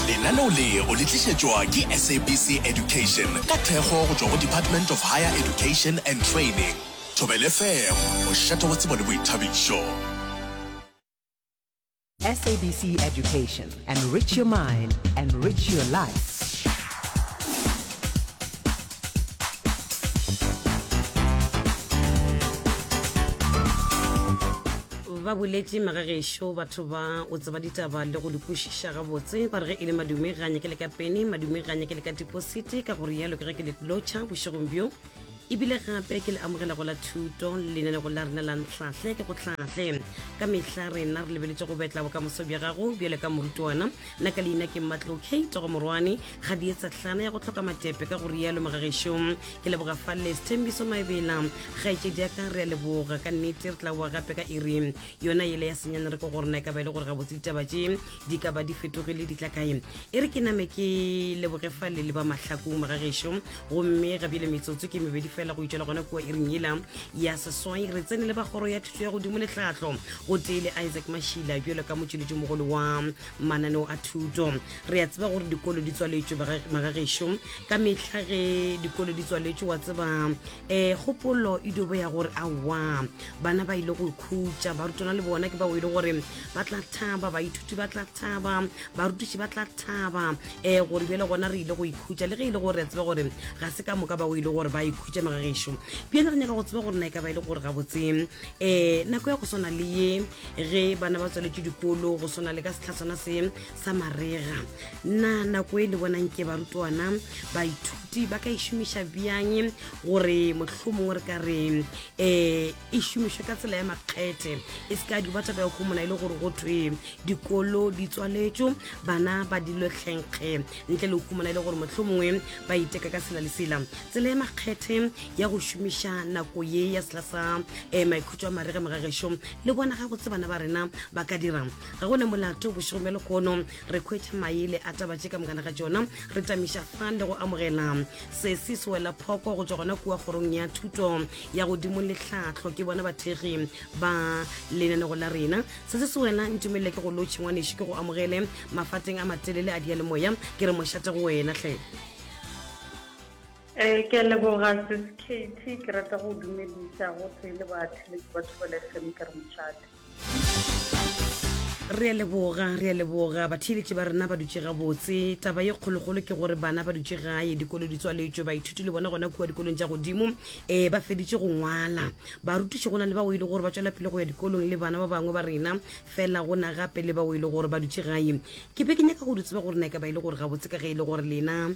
lenaneo le o le tlišetšwa ke sabc education ka thekgo go tšwa go department of higher education and training thobele fm o šata wa tsebo le boithabišo sabc education enrich your mind enrich your life ba boletše magagešo batho ba o tseba ditaba le go di kwešiša gabotse ba re ge e le madume ga nyake le ka pene madume ga nyake le ka deposite ka gore yalo ke ge ke le lotšha bošegong bjo ebile gape ke le amogela go la thuto lenene go la rena la ntlhahle ke go tlhahle ka mehla rena re lebeletse go betla bokamoso bja gago bjale ka morutwana nna ka leina ke matlo k togomorwane ga di etsa tlana ya go tlhoka matepe ka go rialo mogageso ke leboga falle sethembiso maebela gaetšedi ya ka re a leboga ka nnete re tla boa gape ka iri yona ele ya senyane re ko go rena e ka ba e le gore ga botse ditaba tše di ka ba di fetogile di tla kae e re ke name ke leboge falle le ba mahlakong mogageso gomme ga bjele metsotso ke mebedi fela go itšela gona kua iring yela ya seswai re tsene le ba kgoro ya thuto ya godimo le tlhahlo go tee le isaac mashila bjalo ka motšweletšomogolo wa mananeo a thuto re a tseba gore dikolo di tswaletšwe magagešo ka mehla ge dikolo di tswaletšwe wa tseba um eh, kgopolo e dobo ya gore awa bana ba ile go ikhutša barutwana le bona ke bao e le gore ba tla thaba baithuti ba tla thaba barutiši ba tla thaba um eh, gore bjele gona re ile go ikhutša le ge e le gore re a tseba gore ga se ka moka bao e le gore ba ikhutša magagešo bjele re nyaka go tseba gore na e ka ba e le gore gabotse um nako ya go swana le ye ge bana ba tsweletše dikolo go swana le ka setlhatswana se sa marega na nako e le bonang ke barutwana baithuti ba ka e šomiša bjang gore motlho mongwe re ka re um e šomišwe ka tsela ya makgethe e se ka duba taba ya kgomola e le gore go thwe dikolo di tswaletšo bana ba dilo tlhenkge ntle le kgomola e le gore motlho mongwe ba iteka ka sela le sela tsela ya makgethe ya go šomiša nako ye ya sela sa um tšwa maregeng ga gešo le bona ga go tse bana ba rena ba ka dirang ga go ne molato bošego bja lekgono re khwetša mae le ataba tše ka mokana ga tšona re tamiša fan le go amogela se se se wela phoko go tšwa gona kua kgorong ya thuto ya godimo le tlhatlho ke bona bathegi ba lenanego la rena se se se wena ntumelele ke go lotšhengwaneši ke go amogele mafateng a matelele a dialemoya ke re mošate go wena tlhe Eh, ke a leboga sis Katie, ke rata go dumedisa go tee le batho le ba thobela fm ke re mošate. re a leboga re a leboga batheeletši ba rena ba dutše gabotse taba ye kgolokgolo ke gore bana ba dutše gae dikolo di tswaletšwe baithuti le bona gona kua dikolong tša godimo um ba feditše go ngwala barutiši go na le bao e le gore ba tšwela pele go ya dikolong le bana ba bangwe ba rena fela go na gape le bao e le gore ba dutše gae ke be ke nyaka go di tseba gore na e ka ba e le gore gabotse ka ge e le gore lena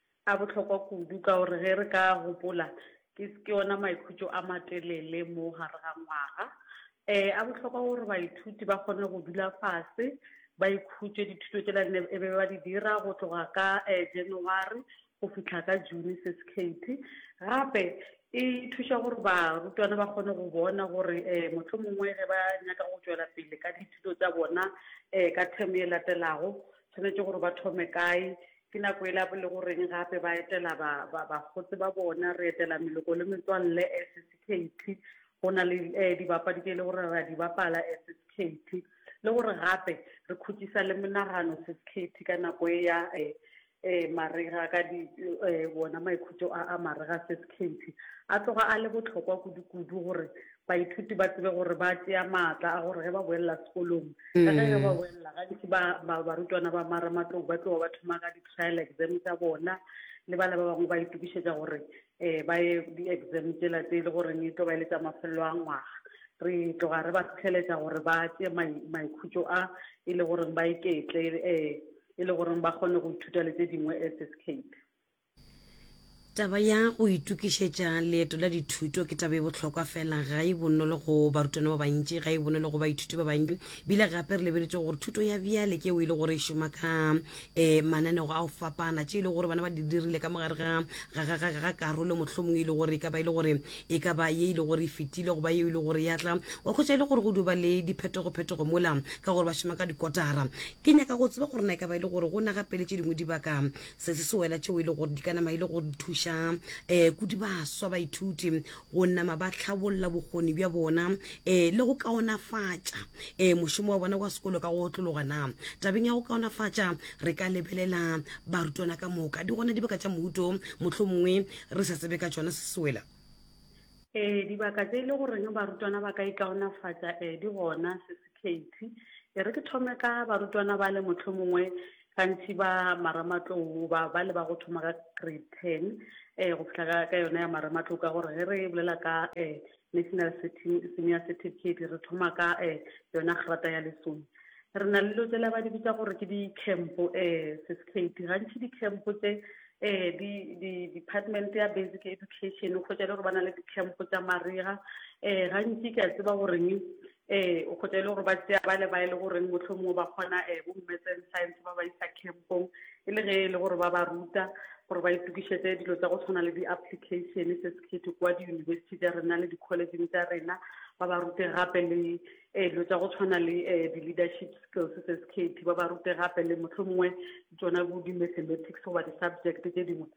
A bohlokwa kudu ka gore ge re ka gopola ke ke ona maikhutšo a matelele mo gare ga ngwaga. E, a bohlokwa gore baithuti ba kgone go dula fase ba ikhutše dithuto tšela ne e be ba di dira go tloga ka e January go fihla ka June se sekhethi. Gape e thuša gore barutwana ba kgone go bona gore e mohlomongwe ge ba nyaka go tšwela pele ka dithuto tša bona e ka term e latelago tshwanetše gore ba thome kae Ke nako e la bo le go reng gape ba etela ba, ba, bakgotse ba bona, re etela meloko le metswalle as sekhethi. Go na le eh, dibapadi tše e le gore ra di bapala as sekhethi. Le gore gape re khutšisa le monagano se sekhethi ka nako e ya eh, eh, marega ka di, eh, wona maikhutšo a, a marega se sekhethi. A tloga a le bohlokwa kudu-kudu gore baithuti ba tsebe gore ba tšea maatla a gore ge ba boelela sekolong ka ge ge ba mm. boelela gantši barutwana ba maramatlong ba tloa ba thoma ka di-trial exam tsa bona le bana ba bangwe ba itokišetša gore um ba ye di-exam tsela tse e le goreng e tlo ba e le tsa mafelelo a ngwaga re tloga re ba fitlheletša gore ba tšee maikhutšo a e le goreng ba iketle um e le goreng ba kgone go ithuta le tse dingwe as escape Taba ya go itokišetša leeto la dithuto ke taba e bohlokwa fela ga e bonolo go barutwana ba bantši ga e bonolo go baithuti ba bantši bile gape re lebeletše gore thuto ya bjale ke o e le gore e šoma ka um eh, mananego a go fapana tše e le gore bana ba di dirile ka mogare ga ga karolo mohlomongwe e le gore e ka ba e le gore e ka ba ye e le gore e fetile go ba yeo e le gore ya tla wa khwetsa e le gore go duba le diphetogophetogo mola ka gore ba šoma ka dikotara ke nyaka go tseba gore na e ka ba e le gore go naga pele tše dingwe dibaka Se se sewela tšeo e le gore di ka nama e le gore di thuša um kudu baswa baithuti go nama ba tlhabolla bokgoni bja bona um le go kaonafatša um mošomo wa bona wa sekolo ka go otlologa na tabeng ya go kaonafatša re ka lebelela barutwana ka moka di gona dibaka tša mouto motlho mongwe re sa tsebe ka tšona se sewela um dibaka tse e le goreng barutwana ba ka ikaonafatša um di gona se sekhethi e re ke thome ka barutwana ba le motlho mongwe Gantši ba marematlou ba ba leba go thoma ka grade ten um go fihla ka ka yona ya marematlou ka gore ge re bolela ka um national Certi- senior certificate re thoma ka um yona grata ya lesome re na le dilo tsela ba di bitsa gore ke di-camp um certificate gantši di-camp tse um di di- department ya basic education o kgwetša le gore ba na le di-camp tsa mariga um gantši ke a tseba goreng Ee, o kgotsa e le gore ba tšea ba le ba e le goreng mohlomongwe ba kgona um bo mmetseng science ba ba isa campong e le ge e le gore ba ba ruta gore ba itokišetse dilo tsa go tshwana le di-application se sekgetho kwa di-university tša rena le di-collegeng tša rena ba ba rute gape le um dilo tsa go tshwana le um di-leadership skills se sekgetho ba ba rute gape le mohlomongwe tsona bo di-mathematics goba di-subject tše dingwe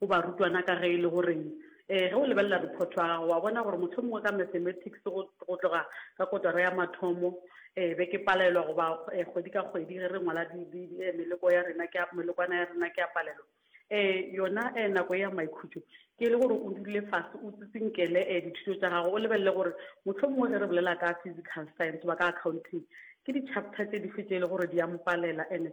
Go barutwana, ka ge e le gore ee, ge o lebelela rephoto ya gago, wa bona gore mohlomongwe ka mathematics go, go tloga ka kotara ya mathomo, ee, be ke palelwa go ba ee, kgwedi ka kgwedi ge re ngwala di, di, di, ee, meloko ya rena, ke a, melokwana ya rena, ke a palelwa. Ee, yona ee, nako ya maikhutšo, ke e le gore o dule fase, o tsitsinkele ee, dithuto tša gago, o lebelele gore mohlomongwe ge re bolela ka physical science goba ka accounting, ke di-chapter tše dife tše e le gore di a mpalela, and-e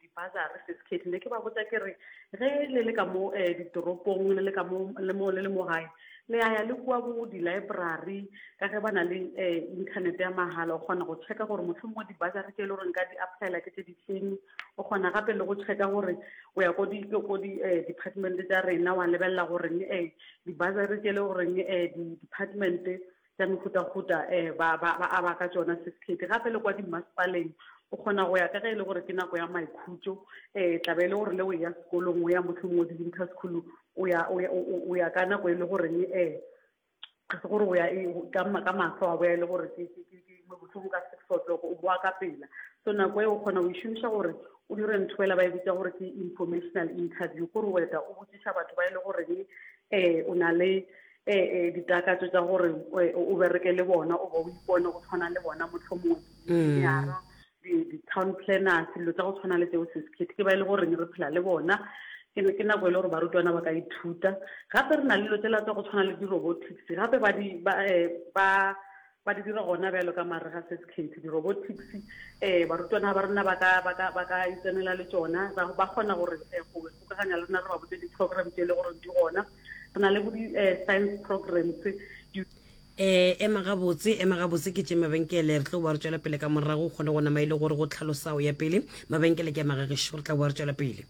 dibasari se se khetlile ke ba botsa ke re ge le le ka mo um ditoropong le le ka mo le mo le le mo gae le ya ya le kua bo di-library ka ge ba na le um internet ya magala o kgona go checka gore motlho mongwe dibasari tse e le goreng ka di applyela ke tse di feng o kgona gape le go checka gore o ya ko di ko di um department tsa rena wa lebelela goreng um dibasari tse e le goreng um di-department tša mehutahuta um ba, ba, ba aba ka tšona sesikhethi gape le kwa dimmasepaleng o kgona go ya ka ge e le gore ke nako ya maikhutšo um tlabe e le gore le o ya sekolong o ya motlho mongwe di-winter school o ya o ya ka nako e le goreng um eh, ga se gore o ya e, ka matlho wa boya e le gore motlhomo ka six o'clock o boa ka pela so nako e o kgona go e šomiša gore o dire ntho fela ba e bitsa gore ke informational interview kore o eta o botsiša batho ba e le goreng um o na le e, e, ditakatso tša gore e, o bereke le bona o ba o ipone go tshwana le bona mohlomongwe dinyara mm. di-town planners dilo tsa go tshwana le tseo sesekhethi ke ba e le goreng re phela le bona ke ke nako e le gore barutwana ba ka ithuta gape re na le dilo tsela tsa go tshwana le di-robotics gape ba di ba eh, ba Ba di dira gona bjalo ka marega se sekhethi, di-robotics. Um barutwana ba rena ba ka, ba ka, ba ka itsenela le tšona, ba, ba kgona gore um go gokaganya le rena re ba botse di-program tše e le goreng di gona. Re na le bo di-science programs, di. Um ema gabotse, ema gabotse ke tše mabenkele. Re tlo boa re tšwela pele ka morago, o kgone go nama e le gore go tlhalosa o ya pele. Mabenkele ke a magagešo, re tla boa re tšwela pele.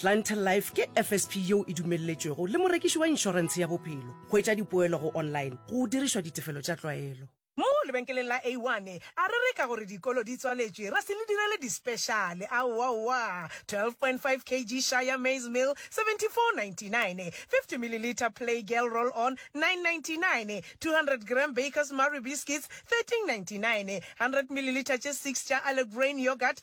Clientele Life ke FSP yeo e dumelletšwego le morekiši wa inšorentshe ya bophelo go etša dipoelo go online go dirišwa ditefelo tša tlwaelo. Mo lebenkeleng la A1 a re reka gore dikolo di tswaletšwe ra se le direle dispeshale, aowa owa, 12.5 kg Shire Maize Meal, 74.99, 50 ml Play Girl Roll On, 9.99, 200 g Bakers Marie Biscuits, 13.99, 100 ml tše 6 tša Allegrain Yoghurt,